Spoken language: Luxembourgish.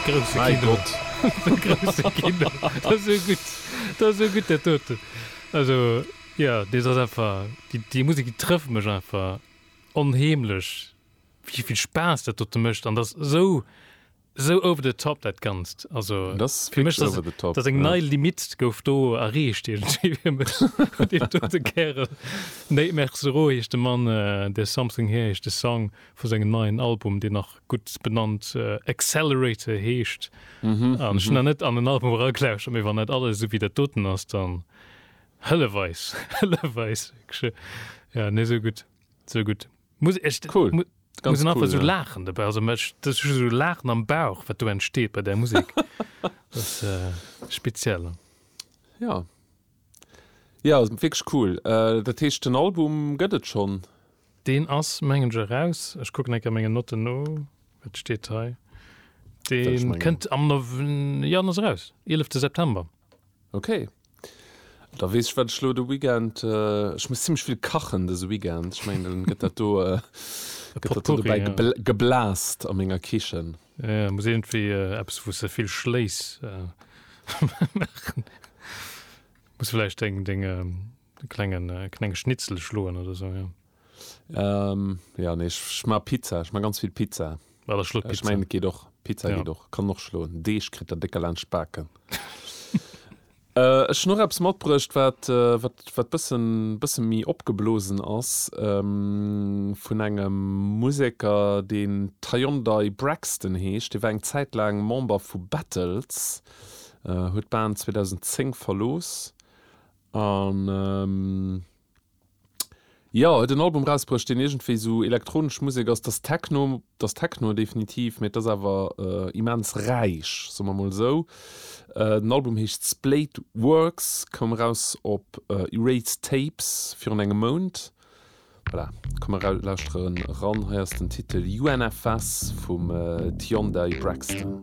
Grousse Kino. Mäi Gott! Grousse Kino. Dat ass esou gutt. Dat ass esou gutt, dat doten. Also, jo, dees ass einfach, déi, déi Musek, déi trëfft mech einfach onheemlech, wéi vill Spaass dat dote mécht. An dat ass esou, esou over the top, dat Ganzt. Also, Dat ass fir mech, wierklech over the top, dat ass eng ja. nei Limitt gouf do erreecht iergendwéi fir mech. Dee dote Kärel, Nate Mercerot heescht de Mann, There's Something Here heescht de Song. vu sengem neien Album, deen nach gutt benannt Accelerator heescht. An ech hunn nach net an en Album eragelauschtert, mee wann dat alles esou wéi dat doten ass, dann hëllef eis, hëllef eis. Jo, nee, esou gutt, esou gutt. Muss ech. Cool. Muss een einfach esou laachen dobäi. Also ech, dat ass just esou Laachen am Bauch, wat do entsteet bei där Musek. Dat ass speziell. Jo. Jo ass wierklech cool. Dat heescht den Album gëtt et schonn? Deen ass mengen ech eraus. Ech kucken eng Kéier mengen Notten no, wat steet hei? Deen kënnt am Nov, jo en ass eraus, eelefte September. Ok, da weess ech wat ech elo de Weekend, ech muss zimlech vill kachen dëse Weekend, ech mengen dann gëtt dat do, gëtt dat do dobäi geblaast a menger Kichen. Ja, muss irgendwie äh, eppes wou se vill schléiss äh, machen. Muss vielleicht deng deng ähm, klengen äh, klenge Schnitzel schloen oder so ja. Ähm, ja nee ich, ich ma Pizza, ich ma ganz viel Pizza. War der schlot Äh, Ich Pizza. mein geht och Pizza Ja. geht och, kann och schloen. Deeg kritt der décker laanscht d'Baken. Ech hunn och eppes matbruecht, wat wat bëssen bëssen méi opgeblosen ass, vun engem Museker, deen Tyondai Braxton heescht. Dee war eng Zäit laang Member vu Battles, huet d'Band 2010 verlooss an. Jo, huet en Album rausbruecht, deen iergendwéi sou elektronesch Musek ass. T'ass Techno, t'ass Techno definitiv, mee t'ass awer immens räich, soe mer mol esou. Den Album heescht Splayed Works, koum eraus op Erased Tapes virun engem Mount. Voilà, komm mer lauschtere ran, hei ass den Titel UNFS vum Tiondei Braxton.